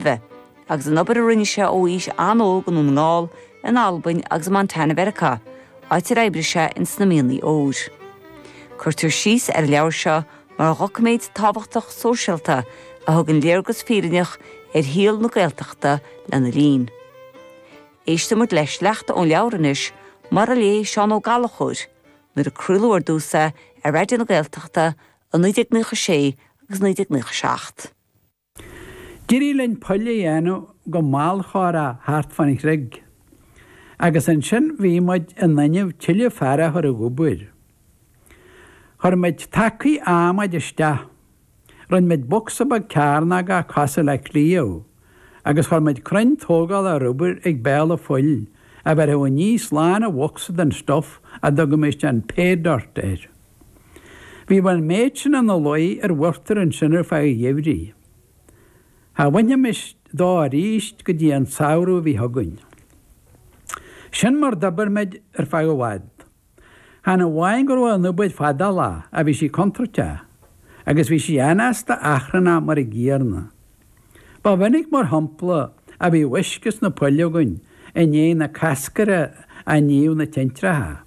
Roimhe, agus an obair a rinne sé ó aois an-óg i nDún na nGall, in Albain agus i Montana Mheiriceá, áit ar oibrigh sé in sna mianaigh óir. Cuirtear síos ar an leabhar seo mar dhoiciméad tábhachtach sóisialta a thugann léargas fírinneach ar shaol na Gaeltachta lena linn. Éisteann muid le sleachta ón leabhar anois, mar a léigh Seán Ó Gallchóir, nuair a craoladh ar dtús é ar Raidió na Gaeltachta i 1996 agus 1997. D'éirigh linn poill a dhéanamh go mall chomhrá thart fán chreig agus ansin bhí muid in innimh tuilleadh fear a chur ag obair. Chuir muid tacaí adhmaid isteach, rinn muid bocsa beag cearnógach cosúil le cliabh agus chuir muid crann tógála ar obair ag béal an phoill a bheirfeadh aníos lán an bhocsa den stuf a dtugaimis an 'pay dirt' air. Bhíodh an méid sin ina luí ar uachtar ansin ar feadh an gheimhridh. Cha bhainfimis dó aríst go dtí an tsamhradh a bhí chugainn. Sin mar d'oibir muid ar feadh i bhfad. Chan amháin go raibh an obair fadálach ach bhí sí contúirteach agus bhí sí anásta achrannach mar an gcéarna. Ba mhinic mar shampla a bhíodh uisce sna poill againn i ndiaidh na cascartha a níodh na tintreacha.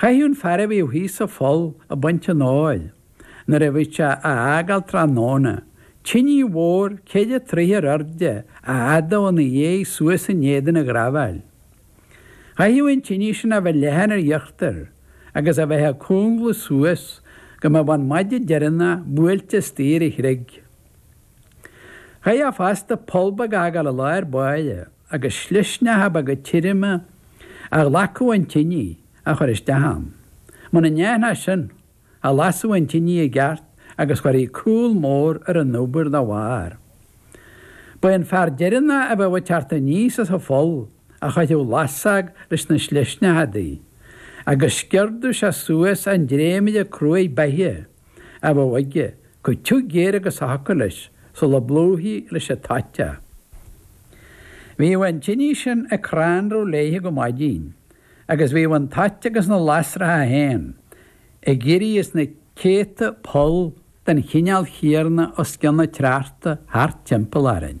Chaithfeadh an fear a bhíodh thíos sa pholl ag baint an óir nuair a bhíodh sé á fhágáil tráthnóna, tinidh mhór, ceithre troithe ar airde, a fhadú ina dhéidh suas in éadan an ghrabháil. Chaithfeadh an tinidh sin a bheith leathan ar íochtar agus a bheith ag cúngladh suas go mbeadh an maide deireanach buailte istigh ar an chreig. Chaithfeá fosta poll beag a fhágáil i lár báire. agus slisneacha beaga tirime a ghlacfadh an tinidh a chur isteach ann. Muna ndéanfá sin, cha lasfadh an tinidh i gceart agus chuirfí cúl mór ar an obair dá bharr. Ba é an fear deireanach a bheadh ag teacht aníos as an pholl a chuirfeadh lasóg leis na slisneacha di, agus sciordadh sé suas an dréimire cruaidh beithe. a bheadh aige, chomh tiubh géar agus a thiocfadh leis sula bplúchfaí leis an toit é. Bhíodh an tinidh sin ag crannradh léithe go maidin agus bhíodh an toit agus na lasracha féin ag éirí as na céadta poll den chineál chéarna os cionn an tsneachta thart timpeall orainn.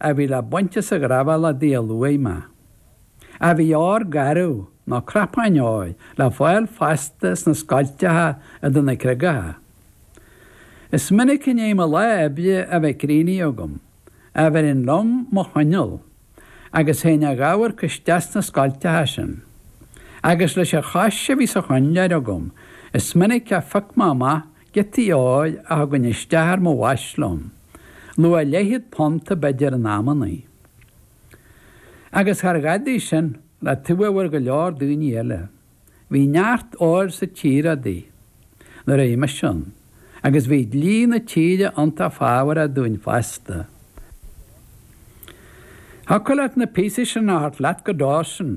a bhí le baint as an ghrabháil le díol luach maith. Ach bhí ór garbh, nó cnapáin óir, le fáil fosta sna scoilteacha idir na creagacha. Is minic i ndiaidh mo lá oibre a bheith críochnaithe agam a bheirinn liom mo choinneal, agus théinn a dh'amharc isteach sna scoilteacha sin. Agus leis an chois a bhí sa choinnleoir agam, is minic a phioc mé amach Giotaí óir a thugainn isteach ar mo bhais liom, luach leithchéad punta b'fhéidir in amannaí. Agus char dhadaidh sin le taobh a bhfuair go leor daoine eile. Bhí neart óir sa tír adaí nuair a bhí mise ann, agus bhí dlí na tíre iontach fábharach dúinn fosta. Thiocfadh leat na píosaí sin a thabhairt leat go Dawson.